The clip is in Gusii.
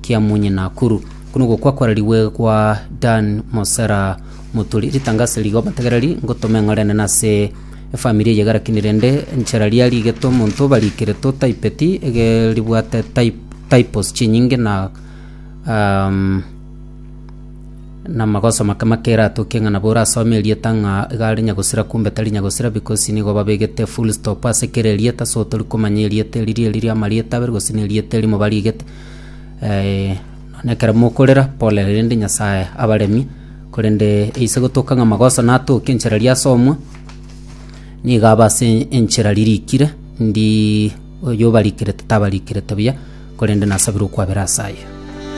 Kiamunyi Nakuru. Kuno gokwa kwararigwe gwa Dan Mosera Muturi. Ritanga ase rigo bategereri ngotoma eng'ora enene ase efamiri eye egarakinire ende enchera ria rigeto omonto barikereto taipeti ege ribwate type typos chinyinge na um, na magoso make make eratokie ng'a nabo orasome erieta ng'a iga rinya gosira kumbe tari rinya gosira because nigo babegete full stop ase kera erieta so tori komanya erieta eri riria ria amarieta abere gose na erieta erimo barigete Eh, nonya ekero mokorera, pole rende Nyasae abaremi, korende eise gotoka ng'a magoso natoke enchera riasomwa, nigo abe ase enchera ririkire, ndi oyobarikirete tabarikerete buya, korende nasabire okwabera as'ayio.